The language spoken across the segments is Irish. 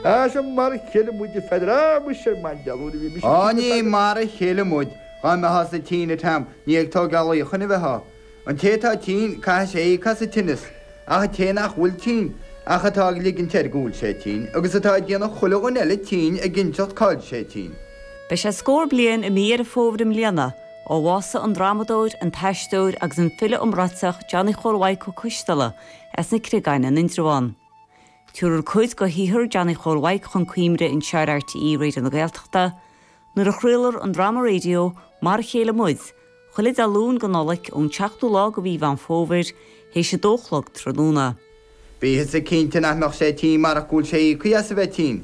Is mar a chéile muid a Pheadair. Á, muise, an maighdealúir a bhí mise ag tigh le Pheadair. Ní mar a chéile muid, dá mbeitheása tinn a Tom, ní ag tógáil íochain a bheitheá. An té atá tinn, caithfidh sé íoc as an tinneas, ach an té nach bhfuil tinn, ach atá ag ligint air go bhfuil sé tinn, agus atá ag déanamh chuile dhuine eile tinn ag inseacht cá'il sé tinn. Beidh sé scór bliain i mí Dheireadh Fómhair i mbliana ó bhásaigh an drámadóir, an t-aisteoir agus an file iomráiteach Johnny Chóil Mhaidhc Ó Coisdealbha as na Creagáin in Indreabhán. Tabharfar cuid go shaothar Johnny Chóil Mhaidhc chun cuimhne anseo ar RTÉ Raidio na Gaeltachta nuair a chraolfar an dráma raidió Mar a Chéile Muid chuile Dé Luain go Nollaig ón tseachtú lá go mhí Mheán Fómhair théis a dó a chlog tráthnóna. Bí thusa cinnte nach mbeadh sé tinn marach go bhfuil sé íoctha as a bheith tinn.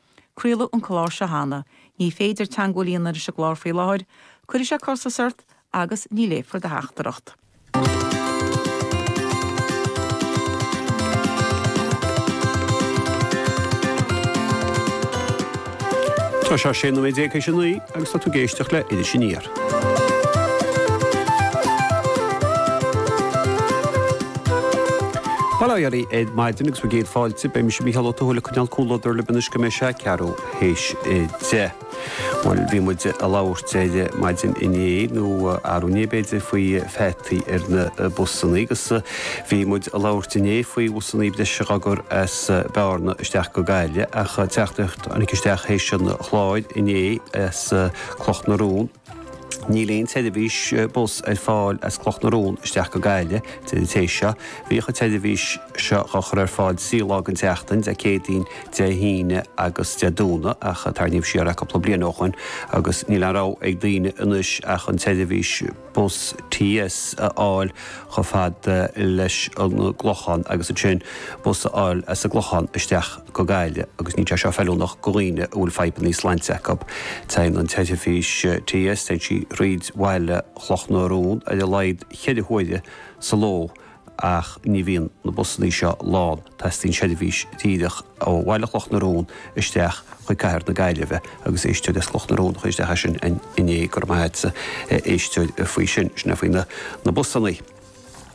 Craoladh an clár seo cheana. Ní féidir teangmháil a dhéanamh leis an gclár faoi láthair. Cuirfidh sé costas ort agus ní léifear do theachtaireacht. Tá sé 16 nóiméad tar éis a naoi agus tá tú ag éisteacht le Iris Aniar. Bail ó Dhia oraibh ar maidin agus bhur gcéad fáilte. Beidh mise Mícheál Ó Tuathail ag coinneáil comhluadar libh anois go mbeidh sé ceathrú théis a deich. Bhuel, bhí muid ag labhairt ar maidin inné, nó arú inné b'fhéidir, faoi pheataí ar na busanna agus bhí muid ag labhairt inné faoi bhusanna breise dhá gcur as Bearna isteach go Gaillimh ach teachtaireacht a tháinig isteach théis an chláir inné as Cloch na Rón. Níl aon tseirbhís bus ar fáil as Cloch na Rón isteach go Gaillimh a deir an té seo. Bhíodh an tseirbhís seo á chur ar fáil trí lá den tseachtain, Dé Céadaoin, Dé hAoine agus Dé Domhnaigh, ach tarraingíodh siar é cúpla bliain ó shoin agus níl aon rogha ag daoine anois ach an tseirbhís. bus TFI a fháil chomh fada leis an gClochán agus ansin bus a fháil as an gClochán isteach go Gaillimh agus níl sé seo feiliúnach go dhaoine a bhfuil fadhbanna sláinte acub. Téann an tseirbhís TFI, téann sí thríd bhaile Chloch na Rón ar a laghad cheithre huaire sa ló ach ní bhíonn na busannaí seo lán, teastaíonn seirbhís díreach ó bhaile Chloch na Rón isteach chuig cathair na Gaillimhe agus éisteoir as Cloch na Rón a chuir isteach é sin inné, go raibh maith agatsa a éisteoir faoi sin, sin é faoi na busannaí.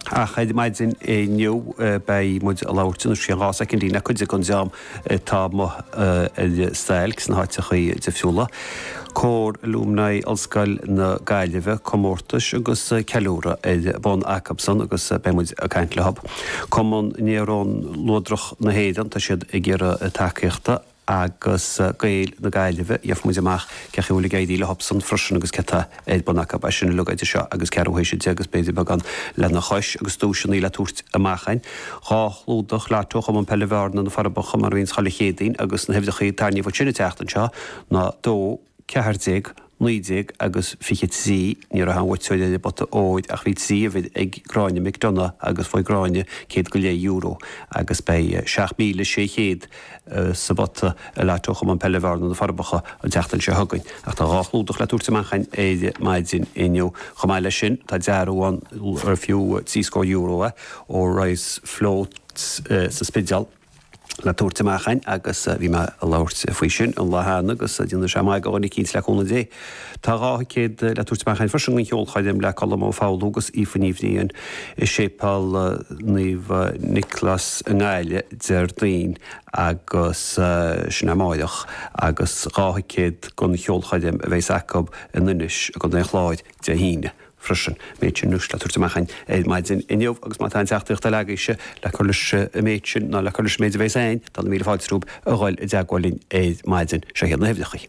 Ach ar maidin inniu beidh muid ag labhairt anois i gceann dhá soicindín le cuid den dream atá amuigh ar stailc sna háiteachaí difriúla, Cór Alumni Ollscoil na Gaillimhe, Comórtais agus Ceiliúradh ar bun acub san agus beidh muid ag caint leothub Cumann Néarón Luadrach na hÉireann, tá siad ag iarraidh tacaíochta, agus Gaeil na Gaillimhe, gheobhaidh muid amach cén chaoi a bhfuil ag éirí leothub san freisin agus cé atá ar bun acu. Beidh sin uilig idir seo agus ceathrú tar éis a deich is b'fhéidir beagán lena chois agus duaiseanna le tabhairt amach againn, dhá chlúdach lotto ó Chumann Peile Bhearna, Na Forbacha, mar a bhíonns chuile Chéadaoin agus na huimhreacha a tarraingíodh ansin an tseachtain seo ná dó ceathair déag, naoi déag agus fiche trí. Ní raibh aon bhuaiteoir ar an bpota óir ach bhí trí uimhir ag Gráinne McDonagh agus bhuaigh Gráinne céad go leith euro agus beidh seacht míle sé chéad sa bpota i lotto Chumann Peile Bhearna, Na Forbacha, an tseachtain seo chugainn. Ach tá dhá chlúdach le tabhairt amach againn ar maidin inniu. Chomh maith leis sin, tá dearbhú ann ar fiú trí scór euro é, ó Rice Floats sa Spidéal, le tabhairt amach againn agus bhí mé ag labhairt faoi sin an lá cheana agus déanfaidh sé maith do dhuine eicínt, le cúnamh Dé. Tá dhá thicéad le tabhairt amach againn freisin don cheolchoirm le Colm Ó Foghlú agus Aoife Ní Bhriain i Séipeál Naomh Nioclás i nGaillimh Déardaoin agus sin amárach agus dhá thicéad don cheolchoirm a bheas acu in Inis i gContae an Chláir Dé hAoine freisin. Méid sin anois le tabhairt amach againn ar maidin inniu agus má tá aon teachtaireacht eile agaibhse le cur leis an méid sin ná le cur leis an méid a bheas againn, tá na míle fáilte romhaibh a dhul i dteagmháil linn ar maidin. Seo iad na huimhreacha.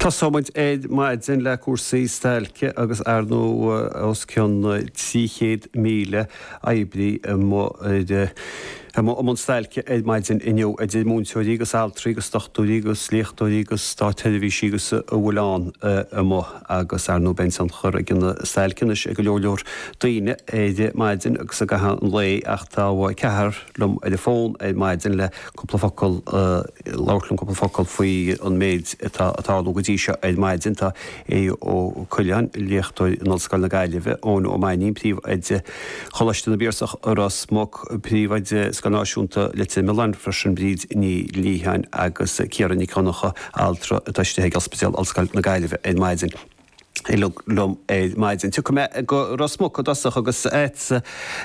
Tosóimid ar maidin le cúrsaí stailce agus ar ndóigh os cionn 300,000 oibrí amuigh i mbun stailce ar maidin inniu, idir mhúinteoirí agus altraí agus dochtúirí agus léachtóirí agus státsheirbhísigh agus a bhfuil ann amuigh agus ar ndóigh beidh tionchar ag an stailc anois ar go leor leor daoine ar maidin agus i gcaitheamh an lae ach tá ceathrar liom ar an bhfón ar maidin le cúpla focal, labhairt liom cúpla focal faoi an méid atá ag tarlú go dtí seo ar maidin. Tá Aodh Ó Coileáin, léachtóir in Ollscoil na Gaillimhe, Eoin Ó Mainín, príomhoide Choláiste na bPiarsach i Ros Muc, príomhoide Scoil Náisiúnta Leitir Mealláin freisin, Bríd Ní Liatháin agus Ciara Nic Dhonnacha, altra atá istigh ag Ospidéal Ollscoil na Gaillimhe ar maidin. Uilig liom ar maidin. Tiocfaidh mé go Ros Muc i dtosach agus agat,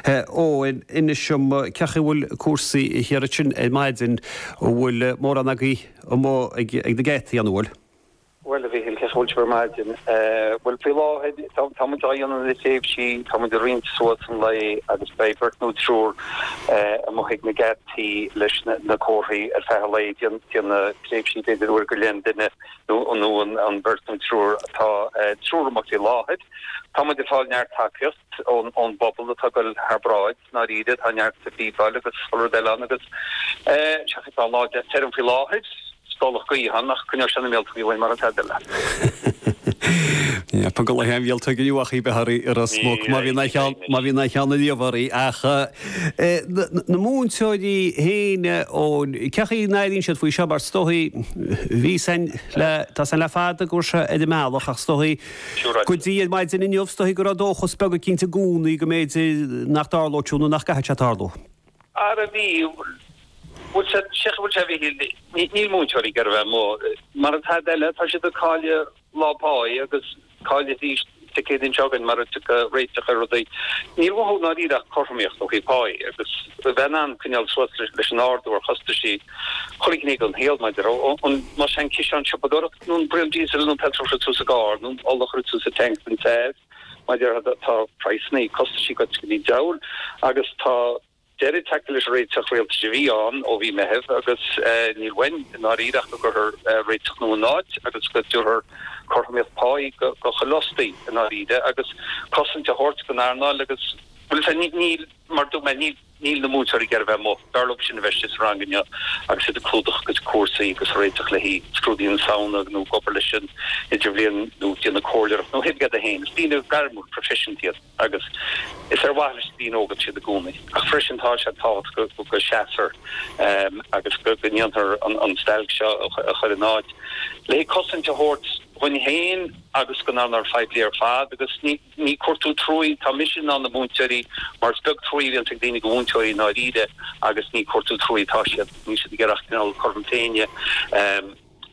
Eoin, inis dom cén chaoi a bhfuil cúrsaí thiar ansin ar maidin, an bhfuil mórán agaibh amuigh ag na geataí, an bhfuil? Bhuel, a Mhichíl, cén chaoi a bhfuil sibh ar maidin? Bhuel, faoi láthair, tá muid á dhéanamh i dtréimhsí, tá muid ag roinnt suas an lae agus beidh beirt nó triúr amuigh ag na geataí leis na comharthaí ar feadh an lae, déanamh tréimhsí b'fhéidir uair go leith an duine. nó an bheirt nó an triúr atá triúr amuigh faoi láthair. Tá muid ag fáil neart tacaíocht ón bpobal atá ag goil thar bráid, i ndáiríre, tá neart sa phíobáil agus chuile rud eile ann agus seachas tá an lá deas tirim faoi láthair, stolladh gaoithe ann ach coinneoidh sé na míoltógaí uainn mara tada eile. Tá go leith an mhíoltóg inniu ach í bheith thiar i Ros Muc má bhíonn aon cheann a líomhar ach Na múinteoirí féin, ó cén chaoi a n-airíonn siad faoi seo mar is dóigh, bhí a fhios againn le, tá a fhios againn le fada go bhfuil sé ar an mbealach ach is dóigh go dtí ar maidin inniu is dóigh go raibh dóchas beag eicínt i gcónaí go mb'fhéidir nach dtarlódh siúd nó nach gcaithfeadh sé tarlú. Ara bhí, bhfuil sé, sílim go bhfuil sé a bhí, níl múinteoirí ag iarraidh a bheith amuigh. Mara tada eile tá siad ag cailleadh. lá páí agus caillfidh siad Dé Céadaoin seo chugainn mara dtiocfaidh réiteach ar rudaí. Níl uathu i ndáiríre ach cothromaíocht ó thaobh páí agus bheith in ann coinneáil suas leis an ardú ar chostaisí chuile ghné den saol, mar a déarfá, más é an ciseán siopadóireachta nó an braon diesel nó petrol a chuir tú sa gcarr nó ola a chuir tú sa tank don teas, mar a déarfá, tá praghsannaí, costaisí goite go dtí an diabhal agus tá. deireadh tagtha leis an réiteach rialtais a bhí ann ó mhí Meitheamh agus níl uainn i ndáiríre ach go gcuirfear réiteach nua in áit agus go dtabharfar cothromaíocht páí go chuile fhostaí i ndáiríre agus cosaint a thabhairt don earnáil agus bhuel sea, níl, mar dúirt mé, níl na múinteoirí ag iarraidh bheith amuigh, b'fhearr leob sin a bheith istigh sa rang inniu agus iad ag clúdach a gcuid cúrsaí agus ag réiteach le haghaidh scrúduithe na Samhna nó ag obair leis an idirbhliain nó ag déanamh comhairleoireacht nó a hoibre fhéin, is daoine gairmiúil, proifisiúnta iad. agus is ar mhaithe leis na daoine óga atá siad i gcónaí ach freisin tá sé tábhachtach go seasfar agus go ndéanfar an stailc seo a chur in áit le cosaint a thabhairt dhuinn féin agus don earnáil phoiblí ar fad agus ní ag cuartú truaí atá mise ná na múinteoirí mar is beag truaí a bhíonn ag daoine go mhúinteoirí i ndáiríre agus ní ag cuartú truaí atá siad níl siad ag iarraidh ach cineál cothrom na Féinne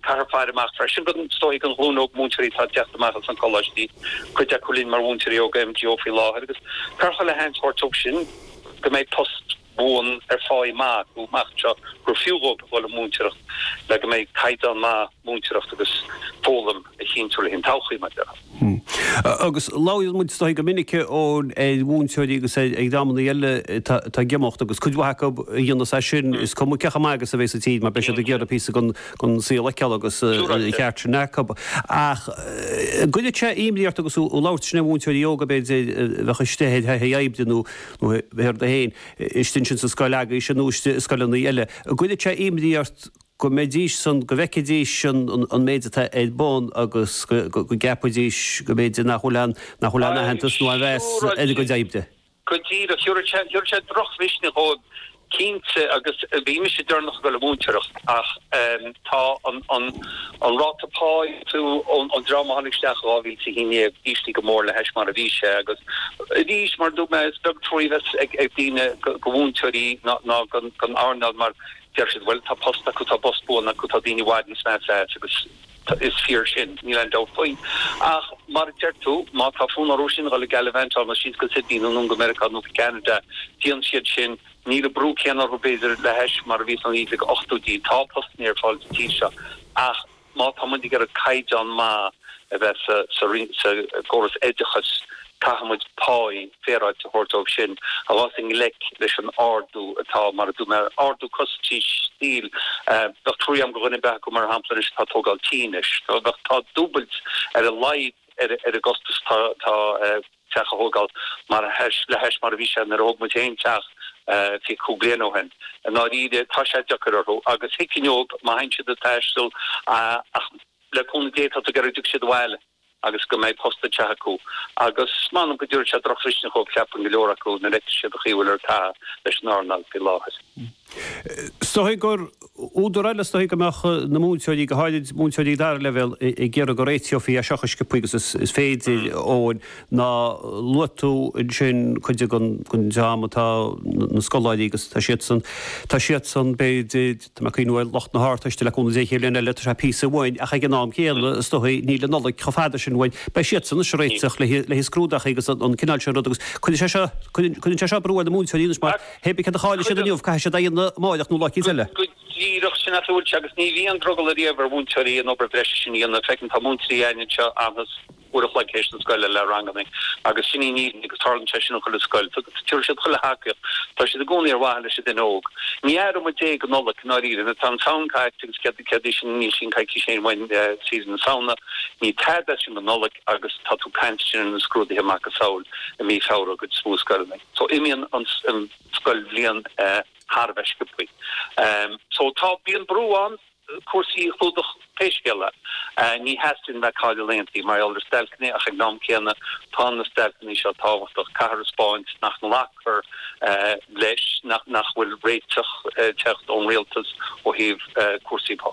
Caithfear faire amach freisin don, is dóigh, don ghlúin óg múinteoirí atá ag teacht amach as na coláistí, cuid acu linn mar mhúinteoirí óga MGO faoi láthair, agus curtha le haon sórt óg sin, go mbeidh post buan ar pháí maith acu amach anseo, gur fiú dhóibh a dhul ag múinteoireacht le go mbeidh caighdeán maith múinteoireachta agus foghlaim. a chinntiú le haghaidh an todhchaí mar sin. Agus labhraíonn muid ar ndóigh go minic ar mhúinteoirí agus ar dhreamanna eile atá ag imeacht agus cuid mhaith acu a dhéanas é sin is cuma cé chomh maith agus a bhéas an tír mar beidh siad ag iarraidh píosa den saol a fheiceáil agus an ceart sin acu. Ach an gcuireann sé imní ort agus tú ag labhairt leis na múinteoirí óga b'fhéidir a bheadh istigh ar thaithi oibre nó b'fhéidir iad féin istigh ansin sa scoil agaibh sin nó istigh i scoileanna eile, an gcuireann sé imní ort go mbeidís san, go bhfeicfidís an méid atá ar bun agus go gceapfaidís go mb'fhéidir nach bhfuil aon, nach bhfuil aon aitheantas nó aon mheas ar a gcuid oibre. Go díreach. Thiúrfadh sé drochmhisneach dhóibh cinnte agus bhí mise deireanach ag dul ag múinteoireacht ach tá an ráta pá ag dul don dream a tháinig isteach i 2011 íslithe go mór le hais mar a bhí sé agus arís mar a dúirt mé is beag truaí a bheas ag daoine go mhúinteoirí ná don earnáil mar Deir siad bhuel tá post acu, tá post buan acu, tá daoine i bhfad níos measa as agus is fíor sin, níl aon dabht faoi. Ach mar a deir tú, má tá fonn orthu sin a dhul ag gallivantáil, nó síos go Sydney nó anonn go Meiriceá nó go Ceanada, déanann siad sin. Níl an brú céanna orthu b'fhéidir le hais mar a bhí sna, ag na hochtóidí. Tá postanna ar fáil sa tír seo ach. Má tá muid ag iarraidh caighdeán maith a bheith sa gcóras oideachais caithfidh muid pá féaráilte a thabhairt dóibh sin a bheas i ngleic leis an ardú atá, mar a dúirt mé, ardú costas tí thíos. Bheadh trua agam do dhuine ar bith acu, mar shampla, anois atá ag tógáil tí anois. Tá dúbailt ar a laghad ar an gcostas atá. teach a thógáil mar le hais mar a bhí sé nuair a thóg muid féin teach fiche cúig bliain ó shin. I ndáiríre tá sé deacair orthu agus tuigim dóibh má théann siad ag taisteal ach le cúnamh Dé tá tú ag iarraidh go dtiocfaidh siad abhaile agus go mbeidh post eicínt acu agus m'anam go dtabharfaidh sé drochmhisneach dhóibh ceapaim go leor acu nuair a fheicfeas siad an chaoi a bhfuiltear ag caitheamh leis an earnáil faoi láthair. Is dóigh gur údar eile is dóigh go mbeadh na múinteoirí, go háirid múinteoirí dara leibhéal, ag iarraidh go réiteofaí é seo chomh sciopthaí agus is féidir, Eoin, ná luaigh tú ansin cuid den dream atá, na scoláirí agus tá siadsan, tá siadsan, b'fhéidir, tá mé ag cuimhneamh ar lucht na hArdteiste le cúnamh Dé, chéad bhliain eile, tá sé píosa uainn ach ag an am céanna is dóigh níl an Nollaig chomh fada sin uainn, beidh siadsan anois ag réiteach le haghaidh scrúduithe agus an cineál sin rud agus cuireann sé seo, cuireann sé seo brú ar na múinteoirí anois mar. hibé céard a chaill siad inniu? Caithfidh siad é a dhéanamh amáireach nó lá eicínt eile. Go díreach, sin a bhfuil sé agus ní bhíonn drogall ariamh ar mhúinteoirí an obair bhreise sin a dhéanamh. Feicim, tá múinteoirí againn anseo a fhanas uair a chloig théis na scoile le ranganna agus sin í an fhírinne agus tarlaíonn sé sin in chuile scoil. Tugann siad chuile thacaíocht, tá siad i gcónaí ar mhaithe leis an duine óg. Ní aireoidh muid é go Nollaig, i ndáiríre, tá an tSamhain caillte agus céard é sin? Níl sin coicís féin uainn saoire na Samhna. Ní tada as sin go Nollaig agus tá tú caint ansin ar na scrúduithe macasamhail i mí Feabhra i bhformhór scoileanna. So imíonn an scoilbhliain thar a bheith sciopthaí. So tá, bíonn brú ann cúrsaí a chlúdach pé scéal é. Ní theastaíonn bheith ag cailleadh laethanta mar gheall ar stailceanna ach ag an am céanna tá na stailceanna seo tábhachtach, caithfear a spáint nach nglacfar leis nach bhfuil réiteach ag teacht ón rialtas ó thaobh cúrsaí pá.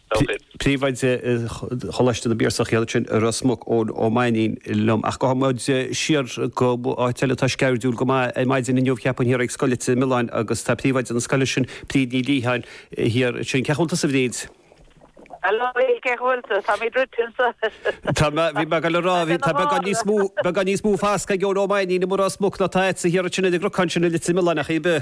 Príomhoide Choláiste na bPiarsach é féin ansin i Ros Muc, Eoin Ó Mainín, liom. Ach gabhfaidh muide siar go áit eile atá sceirdiúil go maith. Ar maidin inniu, cheapfainn, thiar ag Scoil Leitir Mealláin agus tá príomhoide na scoile sin, Bríd Ní Liatháin, thiar ansin. Cén chaoi a bhfuil tusa, a Bhríd? Hello, Bill, cén chaoi a bhfuil tusa? Tá mé druidte anseo. Tá mé, bhí mé ag goil a rá, bhí tá mé gan níos mó, mé gan níos mó foscadh ag Eoin Ó Mainín i Ros Muc ná tá agatsa thiar ansin ag an gcnocán sin i Leitir Mealláin ach hibé.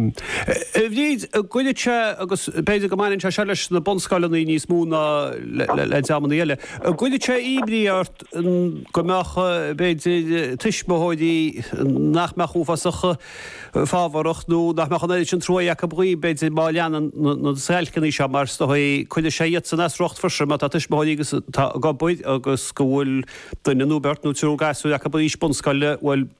Bhríd, an gcuireann sé agus b'fhéidir go mbaineann sé seo leis na bunscoileanna níos mó ná le dreamanna eile. An gcuireann sé imní ort go mbeadh b'fhéidir tuismitheoirí nach mbeadh uafásach fábharach nó nach mbeadh an oiread sin trua acu dhaoibh b'fhéidir má leanann na stailceanna seo mar is dóigh, cuireann sé iadsan as a riocht freisin má tá tuismitheoirí atá ag obair agus go bhfuil duine nó beirt nó triúr gasúr acu in aois bunscoile, bhuel.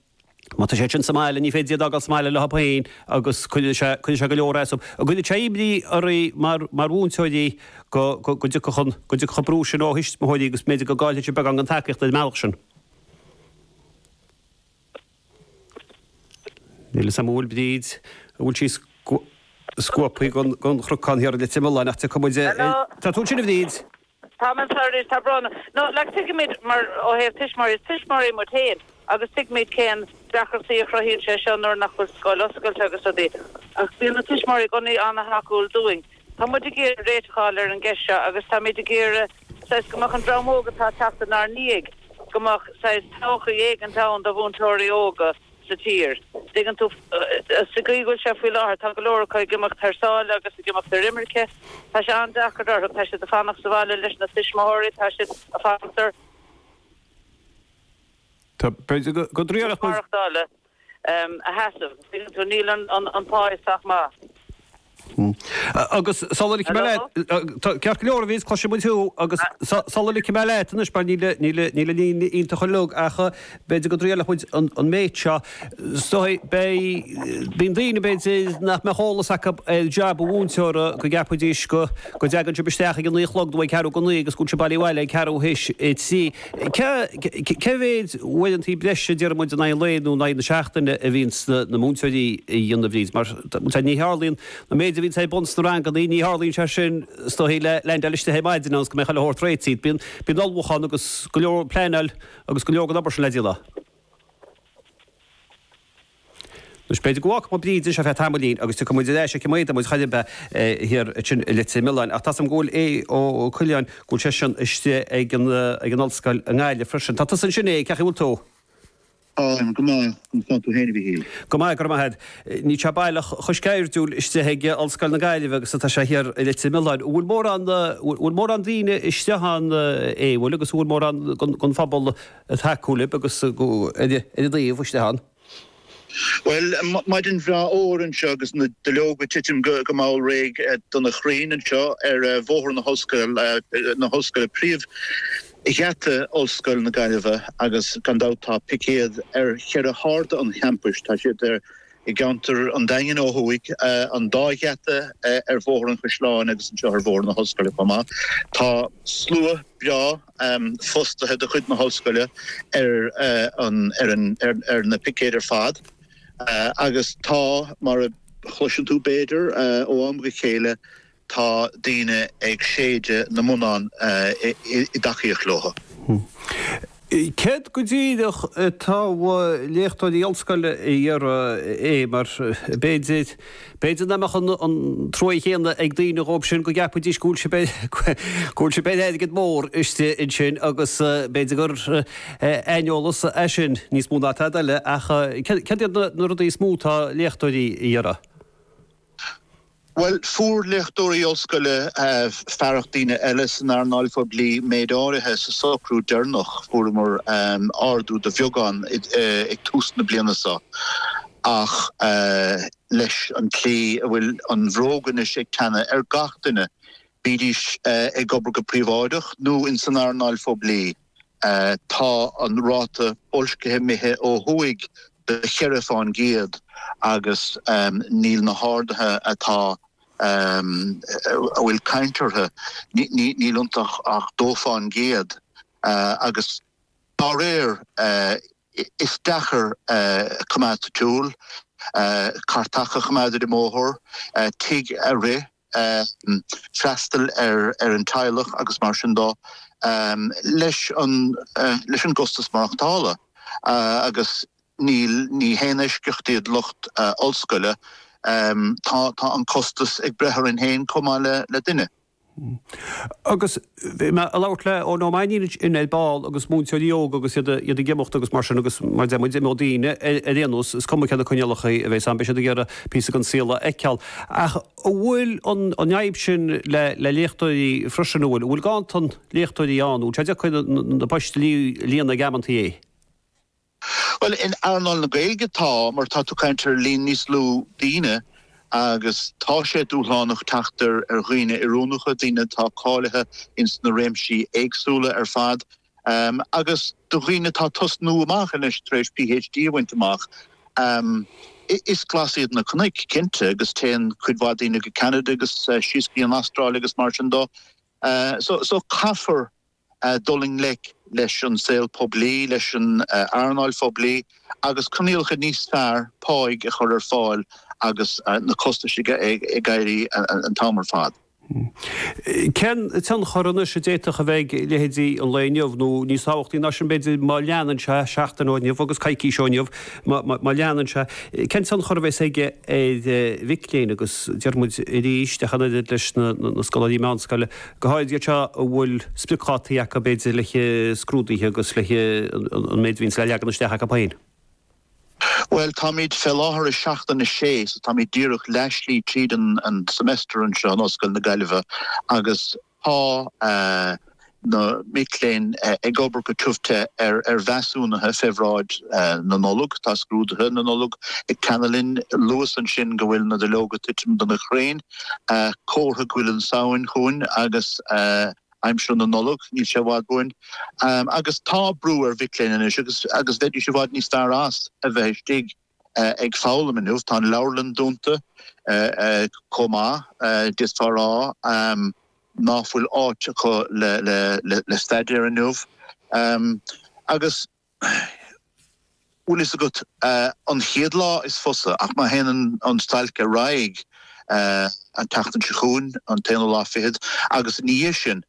Má tá siad sin sa mbaile, ní féidir iad a fhágáil sa mbaile leo féin agus cuireann sé go leor as dóibh, an gcuireann sé imní oraibh mar mhúinteoirí go dtiocfadh an brú sin ó thuismitheoirí agus b'fhéidir go gcaillfeadh sibh beagán den tacaíocht ar an mbealach sin. Níl a fhios a'm an bhfuil Bríd, an bhfuil sí scuabtha den chnocán thiar i Leitir Mealláin ach tiocfaidh muid ar an, tá tú ansin a Bhríd? Tá mé anseo anois, tá brón orm. No, like tuigimid mar, ó thaobh tuismitheoirí, is tuismitheoirí muid féin agus tuigimid cén deacrachtaí a chruthaíonn sé seo nuair nach bhfuil scoil oscailte agus rudaí ach bíonn na tuismitheoirí i gcónaí ana-thacúil dúinn. Tá muid ag iarraidh réiteach a fháil ar an gceist seo agus táimid ag iarraidh, saghas, go mbeadh an dream óg atá ag teacht inár ndiaidh, go mbeadh, saghas, todhchaí éigin ann do mhúinteoirí óga. sa tír. Tuigeann tú, sa gcaoi go bhfuil sé faoi láthair, tá go leor acu ag imeacht thar sáile agus ag imeacht ar imirce. Tá sé an-deacair orthu. Tá siad ag fanacht sa bhaile leis na tuismitheoirí. Tá siad ag fanacht ar chostas maireachtála a sheasamh. Tuigeann tú, níl an pá sách maith. Agus sula ligfidh mé leat, tá ceart go leor, a Bhríd, cloiseann muid thú agus sula ligfidh mé leat anois mar níl an líne iontach uilig ach b'fhéidir go dtriailfidh muid an méid seo. Bíonn daoine, b'fhéidir, nach mbeadh eolas acu ar jab an mhúinteora go gceapfaidís go dtagann sibh isteach ag a naoi a chlog nó ag ceathrú go naoi agus go bhfuil sibh bailithe abhaile ag ceathrú théis a trí. Cé mhéid uaireantaí breise, déarfaidh muid in aghaidh an lae nó in aghaidh na seachtaine a bhíonns na múinteoirí a dhéanamh, a Bhríd? Mar tá, ní tharlaíonn, an méid a bhíonn ar bun sna rangannaí, ní tharlaíonn sé sin is dóigh le leaindeáil istigh ar maidin agus go mbeidh chuile shórt réitithe. Bíonn, bíonn ullmhúchán agus go leor pleaineáil agus go leor den obair sin le déanamh. Anois, b'fhéidir go bhfágfadh muid Bríd anseo ar feadh tamaillín agus tiocfaidh muid ar ais aici maidin muid chaillimhe thiar ansin i Leitir Mealláin. Ach tá 's agam go bhfuil Aodh Ó Coileáin, go bhfuil sé sin istigh ag an, ag an Ollscoil i nGaillimh freisin. Tá tusa ansin Aodh, cén chaoi a bhfuil tú? Táim go maith, conas tá tú féin a Mhíchíl? Go maith, go raibh maith a't. Níl sé baileach chomh sceirdiúil istigh ag Ollscoil na Gaillimhe agus atá sé thiar i Leitir Mealláin. An bhfuil mórán, an bhfuil mórán daoine istigh ann Aodh, an bhfuil, agus an bhfuil mórán den phobal, a thacú libh agus ar a dtaobh istigh ann. Bhuel, maidin bhreá fhuar anseo agus na duilleoga ag titim go mall réidh de na crainn anseo ar Bhóthar na hOllscoile, na hOllscoile, príomhgheata Ollscoil na Gaillimhe agus gan dabht tá picéad ar cheithre hairde an champais. Tá siad i gceantar an Daingin ó thuaidh, an dá gheata ar Bhóthar an Chaisleáin agus anseo ar Bhóthar na hOllscoile chomh maith. Tá slua breá. um fostaithe de chuid na hOllscoile ar an ar an ar na picéid ar fad agus tá mar a chloiseann tú b'fhéidir ó am go chéile tá daoine ag séideadh na mbonnán i dtacaíocht leo. Céard go díreach atá léachtóirí Ollscoile a iarraidh mar b'fhéidir B'fhéidir nach mbeadh an trua chéanna ag daoine dhóibh sin go gceapfaidís go bhfuil siad ar airgead mór istigh ansin agus b'fhéidir gur aineolas é sin níos mó ná tada eile ach céard iad na rudaí is mó atá léachtóirí a iarraidh? Bhuel, fuair léachtóirí ollscoile fearacht daoine eile san earnáil phoiblí méid áirithe sa socrú deireanach. Fuaireamar ardú de bheagán ag tús na bliana seo ach, leis an tslí a bhfuil an bhróg anois ag teannadh ar gach duine, bídís ag obair go príobháideach nó in san earnáil phoiblí. Tá an ráta boilscithe imithe ó thuaidh de cheithre fán gcéad agus níl na harduithe atá a bhfuil caint orthu, níl iontu ach dó fán gcéad agus dá réir, Is deacair coimeád sa tsiúl, cairt a choimeád ar an mbóthar, tigh a rith, freastal ar an teaghlach agus mar sin de leis an gcostas maireachtála agus ní haon eisceacht iad lucht ollscoile, tá an costas ag breith orainn féin comh maith le duine. Agus bhí mé a' labhairt le Eoin Ó Mainnín ar ball agus múinteoirí óga agus iad a, iad ag imeacht agus mar sin agus mar a deir muid, imeoidh daoine, ar, ar aon nós, is cuma céard na coinníollacha a bhéas ann, beidh siad ag iarraidh píosa den saol a fheiceáil. Ach an bhfuil an, an fhadhb sin le, le léachtóirí freisin, an bhfuil, an bhfuil ganntan léachtóirí ann, an bhfuil sé deacair na, na, na poist a lí, líonadh ag amanntaí? Bhuel, in earnáil na Gaeilge tá, mar tá tú ag caint ar líon níos lú daoine agus tá sé dúshlánach teacht ar dhaoine oiriúnacha, daoine atá cáilithe ins na réimsí éagsúla ar fad agus do dhaoine atá ag tosnú amach anois tar éis PhD a bhaint amach. Is glas iad na cnoic, cinnte, agus téann cuid mhaith daoine go Ceanada agus síos go dtí an Astráil agus mar sin de so caithfear, dul i ngleic leis an saol poiblí, leis an earnáil phoiblí agus coinníollacha níos fearr páigh a chur ar fáil agus na costais ag éirí an t-am ar fad. Cén tionchar anois a d'fhéadfadh a bheith ag leithéidí an lae inniu, nó níos tábhachtaí ná sin b'fhéidir, má leanann sé seachtain ó inniu agus coicís ó inniu, má leanann sé, cén tionchar a bheas aige ar mhic léinn agus déarfaimid arís, ach an oiread leis na scoláirí meánscoile, go háirithe iad seo a bhfuil spriocdhátaí acu b'fhéidir le scrúduithe agus le an méid a bhíonns le leagan isteach acu féin. Bhuel táimid fé láthair i seachtain a sé so táimid díreach leathslí tríd an semester anseo in Ollscoil na Gaillimhe agus tá na mic léinn ag obair go tiubh te ar mheasúnaithe fé bhráid na Nollag, tá scrúduithe na Nollag ag teannadh linn. Luais ansin go bhfuil na duilleoga ag titim do na crainn. Comhartha go bhfuil an tSamhain chugainn agus aimsir na Nollag níl sé i bhfad uainn. Agus tá brú ar mhic léinn anois agus agus bheidís i bhfad níos fearr as a bheith istigh ag foghlaim inniu. Tá an leabharlann dúnta chomh maith. D'fhéadfá a rá nach bhfuil áit acu le staidéar inniu. Agus. Bhfuil fhios agat, an chéad lá is fusa, ach má théann an stailc ar aghaidh an tseachtain seo chugainn, an t-aonú lá fichead, agus ina dhiaidh sin,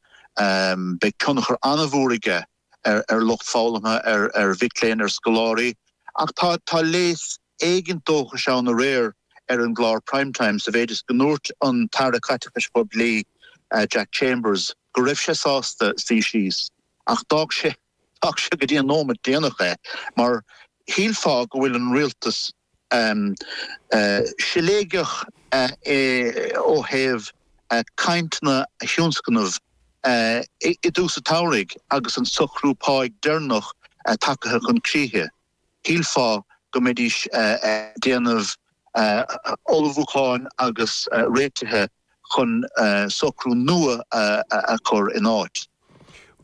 beidh tionchar an-mhór aige ar lucht foghlamtha, ar mhic léinn, ar scoláirí. Ach tá léas éigin dóchais ann aréir ar an gclár Prime Time sa mhéid is go ndúirt an tAire Caiteachais Phoiblí, Jack Chambers, go raibh sé sásta suí síos. Ach d'fhág sé d'fhág sé go dtí an nóimeat déanach é mar shílfeá go bhfuil an rialtas siléigeach ó thaobh cainteanna a thionscnamh i dtús an tsamhraidh agus an socrú páigh deireanach tagtha chun críche. shílfeá go mbeidís ag déanamh ullmhúcháin agus réitithe chun socrú nua a chur in áit.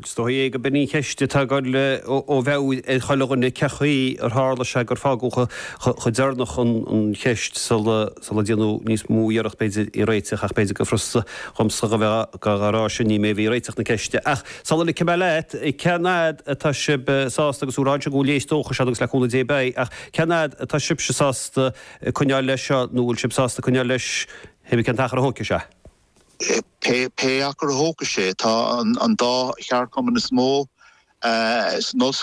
Is dóigh é gurb in an cheist atá ag goil a bheith ag chuile dhuine, cén chaoi ar tharla sé gur fágadh chomh deireanach an cheist sula sula déanadh níos mó iarracht b'fhéidir í réiteach ach b'fhéidir go furasta dhomsa a bheith dhá dhá rá sin ní mé a bhí ag réiteach na ceiste ach sula ligfidh mé leat cén fhad atá sib sásta agus dúirt tú ansin go bhfuil léas dóchais ann agus le cúnamh Dé beidh ach cén fhad atá sibse sásta coinneáil leis seo nó bhfuil sib sásta coinneáil leis is cuma cén t-achar a thógfaidh sé a. pé pé achar a thógfaidh sé tá an an dá cheardchumann is mó uh, is nos